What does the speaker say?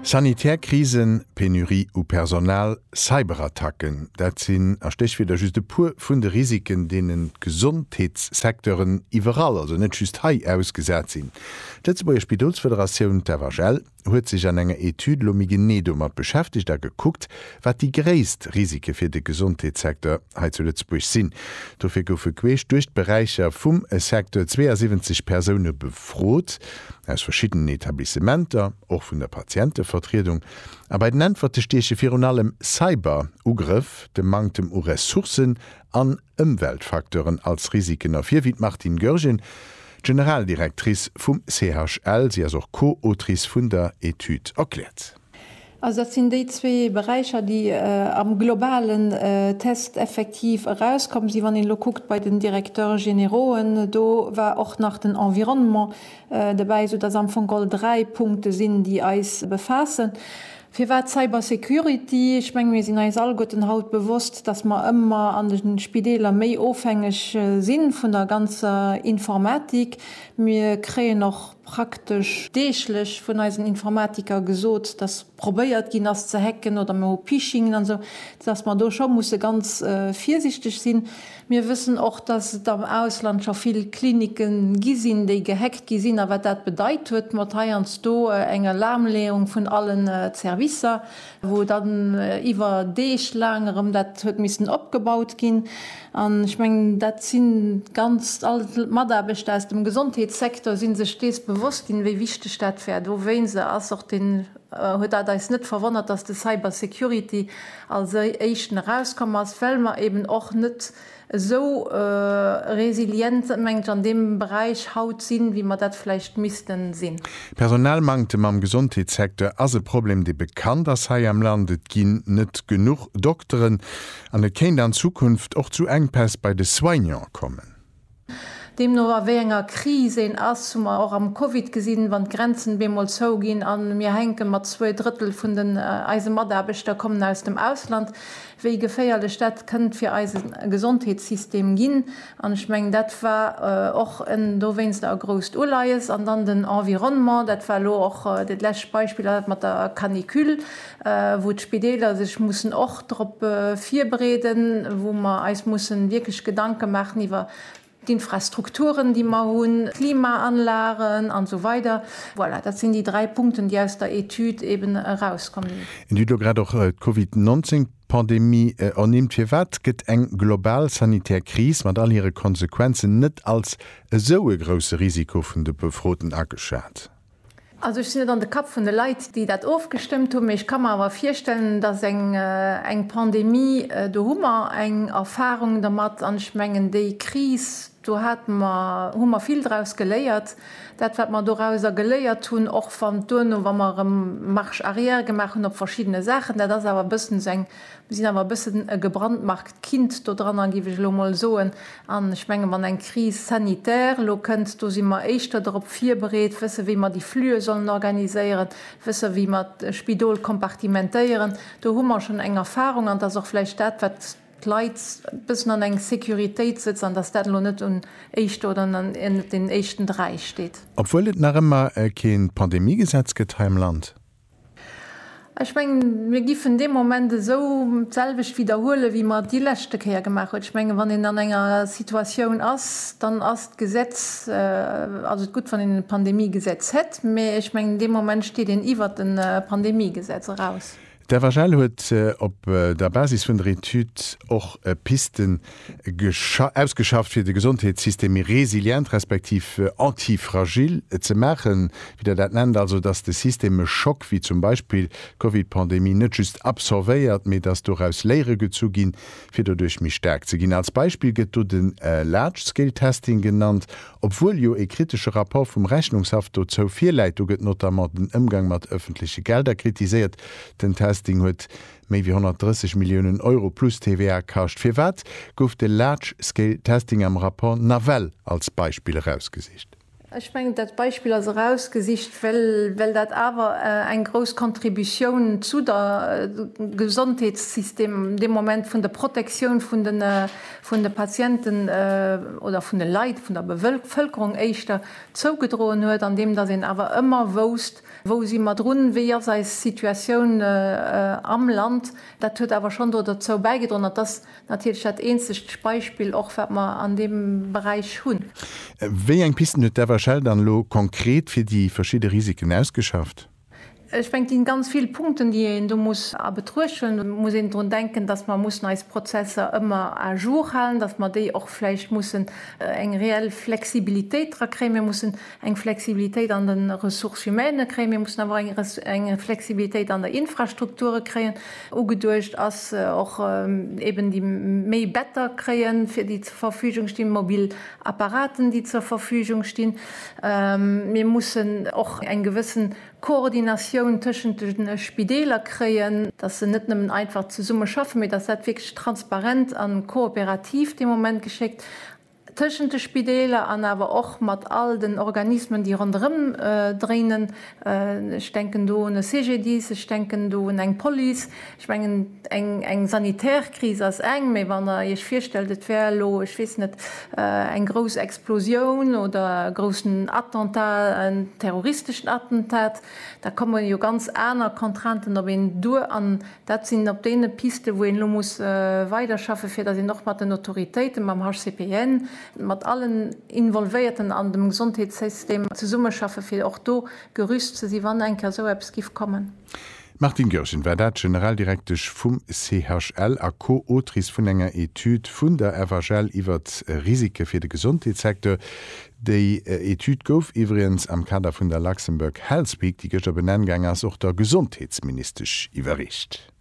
Sanitär Krisen, Penurie u Personal, Cyberattacken, dat sinn a Stéchwierder just e puer vun de Risiken, deenen d'Gesondheetssecteuren iwwerall, also net just hei, ausgesat sinn. D'Lëtzebuerger Spidolsfederatioun, d'FHL, huet sech an enger Etüd elo méi genee domat beschäftegt a gekuckt, wat déi gréisst Risike fir de Gesondheetssecteur, hei zu Lëtzebuerg sinn. Dofir goufe queesch duerch d'Beräicher vum Secteur 72 Persoune befrot, aus verschiddenen Etablissementer, och vun der Patientevertriedung. A bei den Äntwerte stieche virun allem Cyber-Ugrëff, de Manktem u Ressourcen an Ëmweltfacteuren als Risiken ervir, wéi d'Martine Goergen, d'Generaldirectrice vum CHL, si ass och Co-Autrice vun der Etüd, erkläert. Also dat sinn déi zwee Beräicher, déi am globalen Test effektiv erauskomm sinn. Wann een elo kuckt bei den Directeurs généraux'en, do war och nach den Environnement dobäi, esoudass am Fong all dräi Punkte sinn, déi eis befaassen. Firwat Cybersecurity? Ech menge mir sinn eis alleguerten haut bewosst, dass mer ëmmer an de Spideeler méi ofhängeg si vun der ganzer Informatik. Mir kréien och. praktesch deeglech vun eisen Informatiker gesot, dass probéiert ginn ass ze hacken oder mir hu Phishingen an esou, dass mer do scho musse ganz virsichteg sinn. Mir wëssen och, dass et am Ausland scho vill Klinike gi sinn, déi gehackt gi sinn a wat dat bedeit huet mat heiansdo eng Alarmleeung vun allen Servicer. wou dann iwwer Deeg laang erëm dat huet missen opgebaut ginn, an ech mengen, dat si ganz all d'Mataarbechter aus dem Gesondheetssecteur si sech dees bewosst ginn, wéi wichteg dat war. Dowéinst ass och den, huet dat eis net verwonnert, dass de Cybersecurity als éischten erauskomm ass, well mer eeben och net esou resilient mengt ech an deem Beräich haut sinn, wéi mer dat vläicht missten sinn. Personalmanktem am Gesondheetssecteur ass e Problem, dee bekannt ass hei am Land. Et ginn net genuch Dokteren an et kéint an Zukunft och zu Enkpäss bei de Soignante kommen. Deemno a wéi enger Kris een ass, hu mer och am Covid gesinn, wann d'Grenzen bemol zou ginn an mir hänke mat zwee Drëttel vun den eise Mataarbechter kommen aus dem Ausland, wéi geféierlech dat kënnt fir eise Gesondheetssystem ginn, an ech mengen, dat war och en dowéinster e grousst Uleies. An dann den Environnement, dat war elo och dat lescht Beispill, dat mat der Canicule, wou d'Spideeler sech mussen och drop virbereeden, wou mer eis mussen wierklech Gedanke maachen iwwer d'Infrastrukturen déi mer hunn, d'Klimaanlagen an esou weider, voilà, dat sinn déi dräi Punkten déi aus der Etüd eben erauskomm sinn. Dir hutt elo grad och d'Covid 19 Pandemie ernimmt. Firwat gëtt eng global sanitär Kris mat all hire Konsequenzen net als esou e grousse Risiko vun de Befroten ageschat? Also ech sinn net an de Kapp vun de Leit, déi dat ofgestëmmt hunn, mee ech ka mer awer virstellen, dass eng Pandemie, do hu mer eng Erfahrung dermat an ech mengen, déi Kris, do hate mer, hu mer vill draus geléiert. Dat, wat mer dorauser geléiert hunn, och wann duerno, wa mer erëm Marche arrière gemaach hunn op verschiddene Saachen, dat ass awer e bëssen esou eng Mir sinn awer e bëssen e gebrandmarkt Kind do dran an, giff ech elo mol soen, an ech mengen, wann eng Crise sanitaire elo kënnt, do si mer éischter dorop virbereet, wësse wéi mer déi Flüe sollen organiséieren, wësse wéi mer d'Spidol kompartimentéieren. Do hu mer schonn eng Erfahrung an et ass och vläicht dat wat d'Leit e bëssen an eng Sécuritéit sëtzt an dass dat elo net un éischter oder net den éischten Dräi steet. Obwuel et nach ëmmer keen Pandemiegesetz gëtt hei am Land. Ech mengen, mir giffen dee Moment esou d'selwecht widderhuelen, wéi mer et déi leschte Kéier gemaach hunn. Ech mengen, wann een an enger Situatioun ass, dann ass d'Gesetz, ass et gutt, wann een e Pandemiegesetz hätt, mä ech mengen, dee Moment steet een iwwert e Pandemiegesetz eraus. D'FHL huet op der Basis vun der Etüd och Pisten ausgeschafft fir de Gesondheetssystem méi resilient respektiv anti-fragil ze maachen, wéi Der dat nennt, also datt de System e Schock wéi zum Beispill d'Covid-Pandemie net just absorbéiert, mee datt doraus Léiere gezu ginn, fir doduerch méi staark ze ginn. Als Beispill gëtt do de Large-Scale-Testing genannt, obwuel jo ee kritesche Rapport vum Rechnungshaff dozou virläit. Do gëtt notamment den Ëmgang mat ëffentleche Gelder kritiséiert. Den Testing huet Méi wéi 130 Milliounen Euro plus TVA kascht. Firwat gouf de Large Scale Testing am Rapport nawell als Beispill erausgesicht? Ech mengen, dat Beispill ass erausgesicht, well dat awer eng grouss Contributioun zu de Gesondheetssystem dee Moment vun der Protektioun vun de Patienten oder vun de Leit, vun der Bevëlkerung éischter, zougedroen huet, andeem datt een awer ëmmer wousst, Wou si mer drun? Wéi ass eis Situatioun am Land? Dat huet awer schonn do derzou bäigedroen, an d'ass natierlech dat eenzegt Beispill och, wat mer an deem Beräich hunn. Wéi eng Pisten huet d'FHL dann elo konkret fir déi verschidde Risiken ausgeschafft? Ech mengen, et gi ganz vill Punkten, déi een do muss a Betruecht huelen. Et muss een drun denken, dass mer mussen eis Prozesser ëmmer à jour halen, dass mer déi och vläicht mussen eng reell Flexibilitéit dra kréien. Mir mussen eng Flexibilitéit an de Ressources humaines kréien, mir mussen awer och eng Flexibilitéit an der Infrastrukture kréien. Ugeduecht ass och eeben déi méi Better kréien, fir déi zur Verfügung stinn, mobil Apparaten, déi zur Verfügung stinn. Mir mussen och eng gewëssen Koordinatioun tëschent de Spideeler kréien, dass se net nëmmen einfach zesumme schaffen, mee dass dat wierklech transparent a kooperativ dee Moment geschéckt. tëschent de Spideeler an awer och mat all den Organismen, déi ronderëm dréinen. Ech denken do un e CGDIS, ech denken do un eng Police. Ech mengen, eng sanitär Kris ass eng, mä wann Der Iech virstellt, et wär elo, ech weess net, eng grouss Explosioun oder e groussen Attentat, en terroristeschen Attentat, da komme jo ganz aner Contrainten op een duer. Dat sinn op deene Pisten, wou een elo muss weiderschaffe fir datt een och mat den Autoritéiten, mam HCPN, mat allen Involvéierten an dem Gesondheetssystem zesummeschaffe fir och do gerüst ze si wann eng Kéier esou eppes giff kommen. D'Martine Goergen war dat, Generaldirektesch vum CHL a Co-Autrice vun enger Etüd vun der FHL iwwert Risike fir de Gesondheetssecteur. Déi Etüd gouf iwwregens am Kader vun der Luxembourg Health Week, déi gëschter benenn gaang ass, och der Gesondheetsministesch iwwerreecht.